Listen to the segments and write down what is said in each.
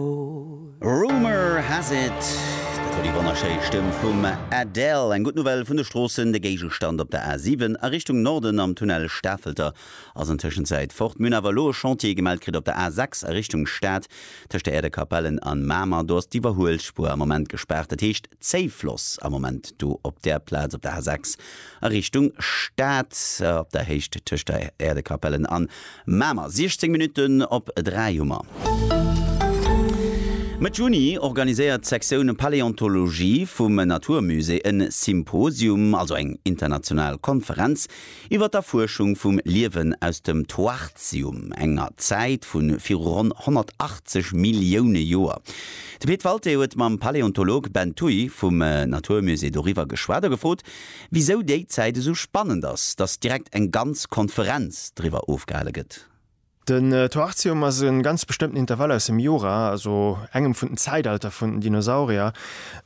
Rumour has it, dat war déi wonnerschéi Stëmm vum Adele. Eng gutt Nouvelle vun de Stroossen, de Géigestand op der A7 a Richtung Norden am Tunnel Stafelter ass an Tëschenzäit fort. Mir hunn awer elo e Chantier gemellt kritt op der A6 a Richtung Stad, tëscht der Äerder Kapellen an Mamer. Do ass d'Iwwerhuelspuer am Moment gespaart, dat heescht Zéifloss am Moment do op där Plaz op der A6. a Richtung Stad op der Héicht tëscht der Äerdekapellen an Mamer. 16 Minutten op 3 hu mer. Mëtt Juni organiséiert d'Sektioun Paläontologie vum Natur Musée en Symposium, also eng international Konferenz, iwwer d'Erfuerschung vum Liewen aus dem Toarcium, enger Zäit vu viru ronn 180 Millioune Joer. De Pit Walté huet mam Paläontolog Ben Thuy vum Natur Musée doriwwer geschwat a gefrot, Wisou déi Zäit esou spannend ass, dass direkt eng ganz Konferenz driwwer ofgehale gëtt. Den Toarcium ass e ganz bestëmmten Intervall aus dem Jura, also engem vun den Zäitalter vun den Dinosaurier,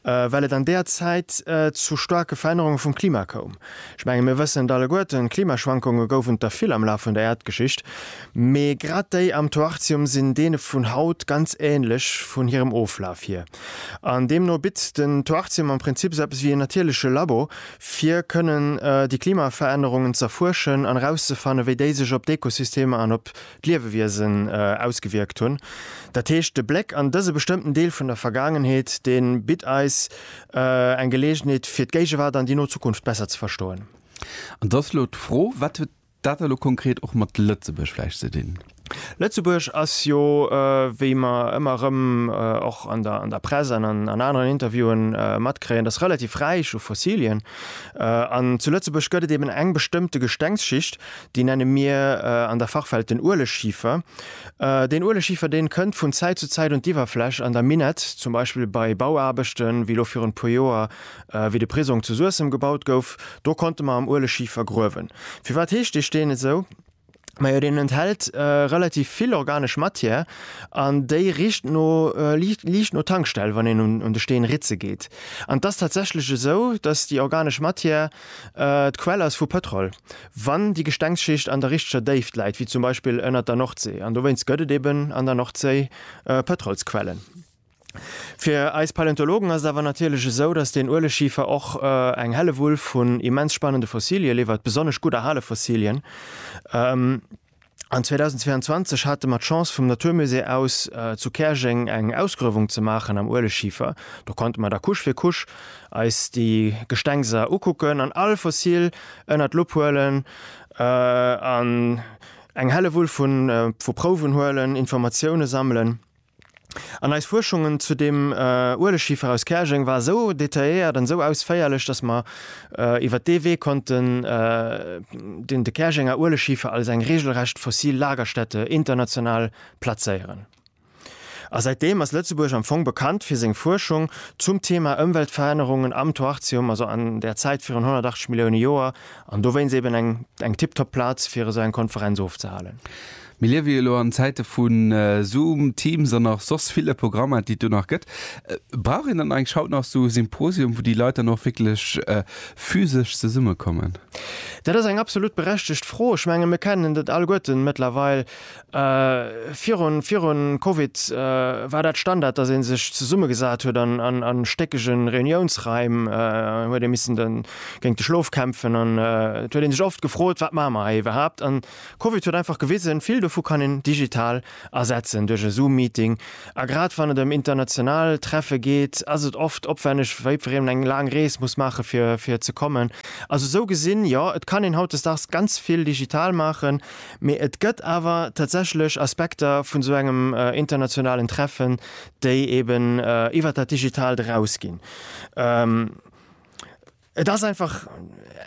well et an deeër Zäit zu staarke Verännerunge vum Klima koum. Ech menge mir wëssen et alleguerten, Klimaschwankunge gouf et der vill am Laf vun der Äerdgeschicht, mee grad déi am Toarcium sinn deene vun haut ganz änlech vun hirem Oflaf hier. An deemno bitt den Toarcium am Prinzip esou eppes wéi een natierleche Labo, fir kënnen déi Klimaverännerungen z'erfuerschen an erauszefanne wéi déi sech op d'Ekosystemer an op d'Liewewiesen ausgewierkt hunn. Dat heescht, de Bléck an dëse bestëmmten Deel vun der Vergaangenheet, dee bitt eis eng Geleegenheet fir d'Géigewaart an déi no Zukunft besser ze verstoen. An et ass elo d'Fro, wat huet Dat hat elo konkret och mat Lëtzebuerg vläicht ze dinn. Lëtzebuerg ass jo, wéi mer ëmmer erëm och an der Press an an aneren Interviewe matkréien, ass relativ räich u Fossilien. An zu Lëtzebuerg gëtt et eben eng bestëmmte Gestengsschicht, déi nenne mir an der Fachwelt den Ueleschiefer. Deen Ueleschiefer, dee kënnt vun Zäit zu Zäit un d'Iwwerfläch an der Minett, zum Beispill bei Bauaarbechten, wéi elo virun e puer Joer Wéi de Prisong zu Suessem gebaut gouf, do konnte mer am Ueleschifer gruewen. Firwat heescht dee Steen esou? Majo deen enthält relativ vill organesch Matière an déi richt no, liicht no Tankstell, wann een un de Steen ritze geet. An et ass tatsächlech esou, datt déi organesch Matière d'Quell ass vu Pëtrol, wann déi Gestengsschicht an der richteger Déift läit, wéi zum Beispill ënnert der Nordséi. An dowéinst gëtt et eben an der Nordséi Pëtrolsquellen. Fir eis Paläontologen ass et awer natierlech esou, datt den Ueleschifer och eng Hellewull vun immens spannende Fossilie liwwert, besonnesch gutt erhale Fossilien. An 2022 hate mer d'Chance vum Natur Musée aus zu Käerjeng eng Ausgruewung ze maachen am Ueleschifer. Do konnte mer da Couche fir Couche eis déi Gestengser ukucken an all Fossil ënnert d'Lupp huelen an eng Hellewull vu Prouwen huelen, Informatiounen sammelen. An eis Fuerschungen zu deem Uelechschiefer aus Käerjeng war esou detailléiert an esou ausféierlech, dass mer iwwert dee Wee konnten den de Käerjenger Uelechschiefer als eng regelrecht fossil Lagerstätte international plazéieren. A säitdeem ass Lëtzebuerg am Fong bekannt fir seng Fuerschung zum Thema Ëmweltverännerungen am Toarcium, also an der Zäit virun 180 Millioune Joer, an dowéinst eben eng tiptop Plaz fir esou eng Konferenz ofzehalen. Mir liewe jo lo an Zäite vu Zoom, Teams an nach soss ville Programmer, déi et do nach gëtt. Brauch een dann eigentlech haut nach esou e Symposium, wou déi Leit dann och wierklech physesch zesummekommen? Dat ass eng absolut berechtegt Fro. Ech menge mir kennen dat alleguerten mëttlerweil. Virun, virun Covid war dat Standard, dass ee sech zesummegesat huet an a stéckege Reuniounsraim, huet ee missen géint de Schlof kämpfen an et huet ee sech oft gefrot, wat maache mer hei iwwerhaapt. Covid huet einfach gewisen, vill dovu kann een digital ersetzen, duerch e Zoom-Meeting. A grad wann et ëm international Treffe geet, ass et oft opwänneg, wéi wann een eng laang Rees muss maachen, fir ze kommen. Also esou gesinn, jo, et kann een hautdesdaags ganz vill digital maachen, mee et gëtt awer tatsächlech Aspekter vun esou engem internationalen Treffen, déi eeben iwwert dat Digitaalt erausginn. Et ass einfach,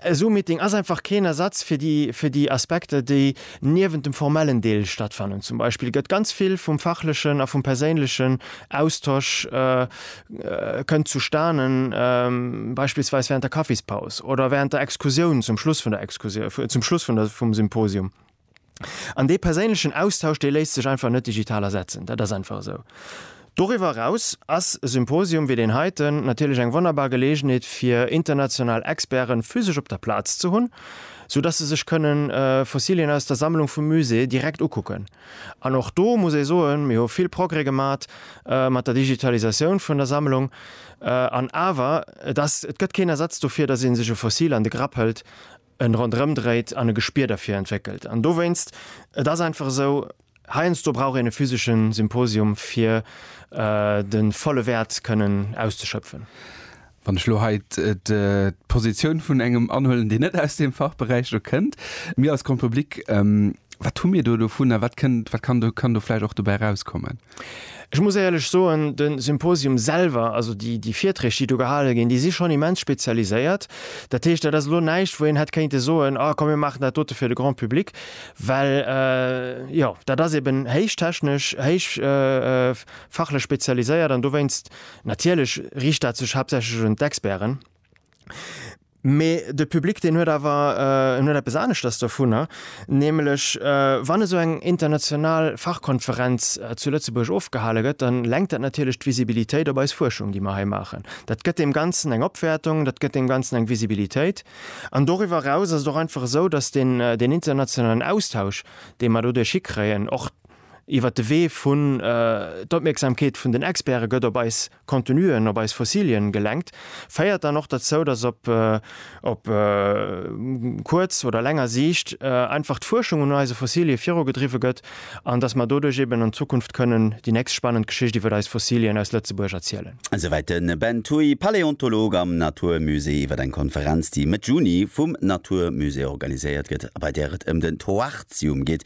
e Zoom-Meeting ass einfach keen Ersatz fir déi, fir déi Aspekter, déi niewent dem formellen Deel stattfannen. Zum Beispill gëtt ganz vill vum fachlechen a vum perséinlechen Austosch, kënnt zustanen, beispillsweis während der Kaffispaus oder während der Exkursioun, zum Schluss vun der Exkursioun, zum Schluss vun der, vum Symposium. An dee perséinlechen Austausch, dee léisst sech einfach net digital ersetzen. Dat ass einfach esou. Doriwwer eraus ass e Symposium wéi deen heiten natierlech eng wonnerbar Geleegenheet, fir international Experte physesch op der Plaz ze hunn, sou dass se sech kënne Fossilien aus der Sammlung vum Musée direkt ukucken. An och do muss ee soen, mir hu vill Progrès gemat mat der Digitalisatioun vun der Sammlung. An awer, et ass, et gëtt keen Ersatz dofir, dass ee sech e Fossil an de Grapp hëlt en ronderëm dréit an e Gespier derfir entwéckelt. An dowéinst, et ass einfach esou, heiansdo brauch een e physesche Symposium, fir de volle Wäert kënnen auszeschöpfen. Wann ech elo hei d'Positioun vun engem anhuelen, deen net aus deem Fachberäich do kënnt, mir als Grand Public, wat hu mir do dovun a wat kann do vläicht och dobäi erauskommen? Ech muss éierlech soen, de Symposium selwer, also déi Virträg, déi do gehale ginn, déi si schonn immens spezialiséiert. Dat heescht, dat ass elo näischt, wou een hätt kéinte soen, Ah, komm mir maachen dat dote fir de Grand public. Well, jo, dat ass eben héich technesch, héich fachlech spezialiséiert an dowéinst natierlech riicht dat sech haaptsächlech un d'Experten. Mee de Public deen huet awer en huet eppes aneschters dovunner, nämlech wann esou eng international Fachkonferenz zu Lëtzebuerg ofgehale gëtt, da lenkt dat natierlech d'Visibilitéit op eis Fuerschung, déi mer hei maachen. Dat gëtt deem Ganzen eng Opwäertung, dat gëtt deem Ganzen eng Visibilitéit. An doriwwer eraus ass et och einfach esou, datt deen internationalen Austausch, dee mer doduerch hikréien, och iwwert de Wee vun d'Opmierksamkeet vun den Experte gëtt op eis, Contenuen op eis Fossilien gelenkt, féiert dann och derzou, dass op op kuerz oder länger Siicht einfach d'Fuerschung un eise Fossilie virugedriwwe gëtt an dass mer doduerch eben an Zukunft kënnen déi nächst spannend Geschicht iwwert eis Fossilien aus Lëtzebuerg erzielen. Esouwäit de Ben Thuy, Paläontolog am Natur Musée iwwer eng Konferenz, déi Mëtt Juni vum Natur Musée organiséiert gëtt a bei där et ëm den Toarcium geet,